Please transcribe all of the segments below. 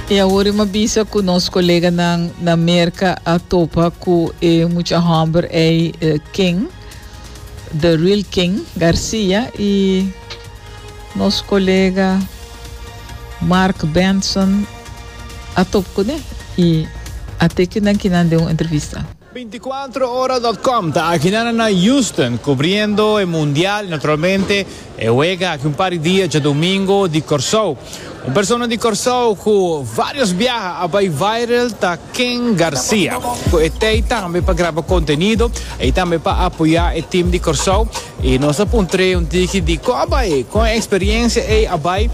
E awor e ma bisa cu nos coleganan na Merca a topa cu e mucha homber ei eh, King, The Real King Garcia y nos colega Mark Benson a top cune y a teki nan kinan den un entrevista. Veinticuatrohora.com ta aki nan na Houston cubriendo e Mundial y naturalmente e wega aki un par di dia djadomingo di Corsou. Un persona di Corsou cu varios biaha a bay viral ta Ken Garcia. Cu e tey tambe pa graba contenido y tambe pa apoya e team di Corsou y nos a puntre un tiki di con a bay, con e experiencia ey a bay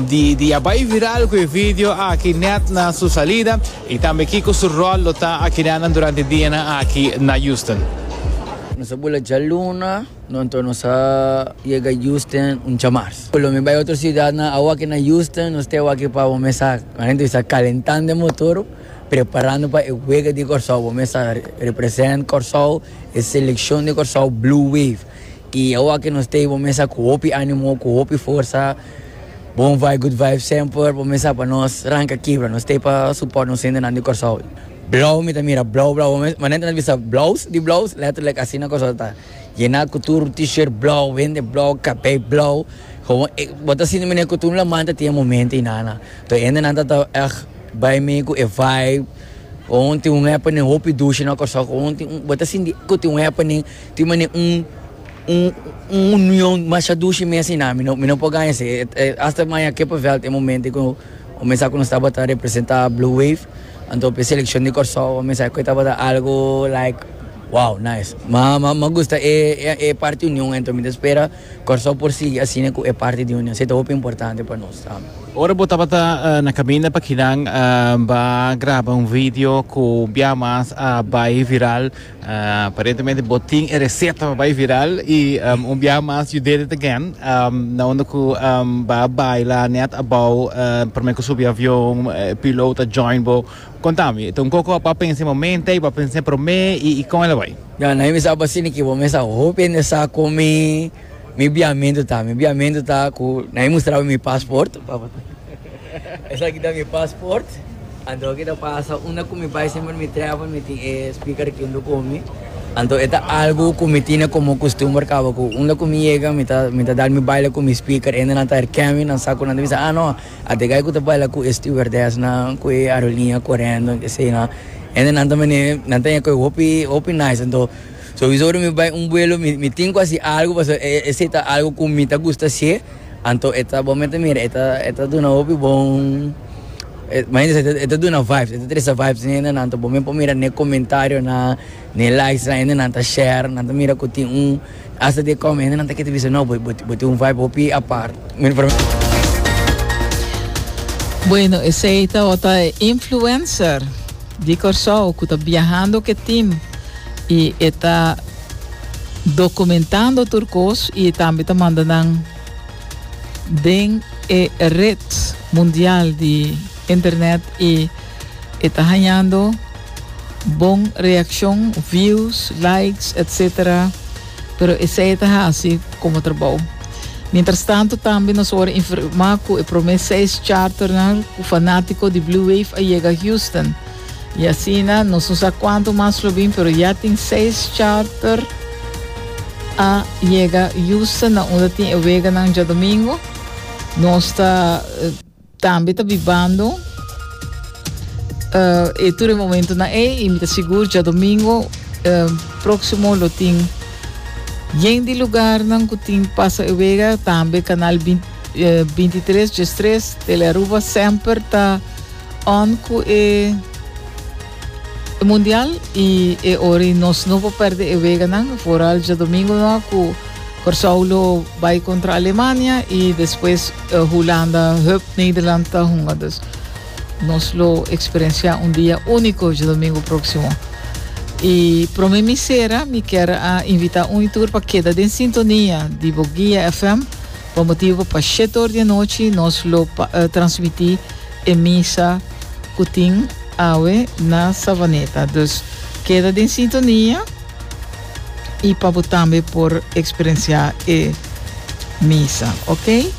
di a bay viral cu e video aki net na su salida. Y tambe kiko su rol lo ta a kidanan durante dianan aki na Houston? Nos a bula djaluna, no anto nos a yega Houston un djamars. Lo mi bai otro ciudadnan awaki na Houston, nos te awaki pa bo mes a, a hende bisa, calentando e motor, preparando pa e wega di Corsou. Bo mes a represent Corsou, e seleccion di Corsou, Blue Wave. Y awaki nos te bo mes a cu hopi animo, cu hopi forsa. Bon vibe good vibe semper por mesa pa nos ranca kibra nos stay pa support nos hendenan di Corsou blauw mi ta mira blauw blauw manente nos bisa blouse di blouse letterlijk asina Corsou ta yena cu tur t-shirt blauw hende blauw cape blauw gewoon e bo ta sinti mene cu tur laman ta tin e momento y nana toer hendenan ta ta ech bay mee cu e vibe gewoon tin un happening hopi dushi na Corsou gewoon tin un bo ta sinti cu tin un happening tin mane un. Un union masha dushi mes i nami no, mi no por gaña esei. Hasta maña Kippenveld e momento ku bo mester sa ku nos tabata representa Blue Wave, anto p'e selekshon di Kòrsou bo mester sa ku e tabata algu like wow nice. Ma m'a gusta e parti union ei, anto mi ta spera Kòrsou por sigui asina ku e parti di union. Esei ta hopi importante pa nos tambe. Ora bo tabata na kaminda pa kinan, b'a graba un video ku bia mas a bai viral Aparentemente bo tin e reseta pa bai viral y un biaha mas you did it again na unda cu ba baila net abao prome cu subi avion piloot a join bo conta mi ta un coco ba pensa e momente y ba pensa prome y con el a bai. Ya, na e mester a basini ki bo mester a hopi hende sa cu mi. Mi biamentu ta, mi biamentu ta ku nan e mustraba mi pasport, esaki ta mi pasport, anto aki ta pasa unda ku mi bai semper mi trèpel mi tin e speaker aki junto ku mi, anto e ta algu ku mi tine komo kustumber kaba ku unda ku mi yega mi ta mi ta dal mi baila ku mi speaker, hende nan ta herken mi, nan sa ku nan ta bisa, ah no, a Degay ku ta baila ku e stewardesnan, ku e aeroliña korèndu, kesiyo, hende nan ta mene nan ta yega ku e hopi hopi nice anto. Sowiso ora mi bai un buelo mi tin cu haci algo pasobra esey ta algo cu mi ta gusta haci, anto e ta bo mi ta mira e ta e ta duna hopi bon imagina e ta duna vibes e ta tresa vibes den hende nan anto bo mi por mira n'e comentariosnan n'e likes nan hende nan ta share nan ta mira cu tin un hasta di e come hende nan ta kere ta bisa no bo tin un vibe hopi apart. Bueno esey ta ota e influencer di Kòrsou cu ta biahando cu e team. y e ta documentando tur cos y e tambe ta manda nan den e red mundial di internet y e ta hañando bon reaccion, views, likes, etc. Pero esey e ta haci como trabou. Mientras tanto tambe nos worde informa cu e prome seis charternan cu fanatico di Blue Wave a yega Houston. Y asina no so sa cuanto mas lo bin, pero ya tin seis charter a llega Houston na unda tin e weganan dja domingo. Nos ta eh, tambe ta bibando eh, e tur e momento na e y mi ta sigur dja domingo eh, próximo lo tin yen di lugarnan cu tin pasa e wega, tambe canal 20, eh, 23, Gestres, Telearuba semper ta On cu e mundial y e ora y nos no por perde e weganan, vooral djadomingo no a cu Corsou lo bai contra Alemania y despues eh, Hulanda, hup, Nederland ta hunga. Dus nos lo experiencia un dia unico djadomingo proximo. Y prome mi cera, mi kier a invita un y tur pa keda den sintonia di bo Guia FM, pa motibo pa shet or di anochi nos lo pa, eh, transmiti E misa cu tin awe na Savaneta. Dus keda den sintonia y pa bo tambe por experiencia e misa. Ok?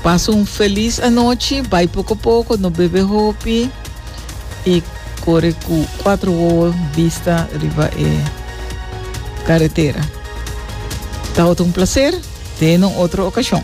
Pasa un feliz anochi, bay poco poco, no bebe hopi y core cu cuatro wowo bista riba e carretera. Tawata un placer. Te no otro ocasion.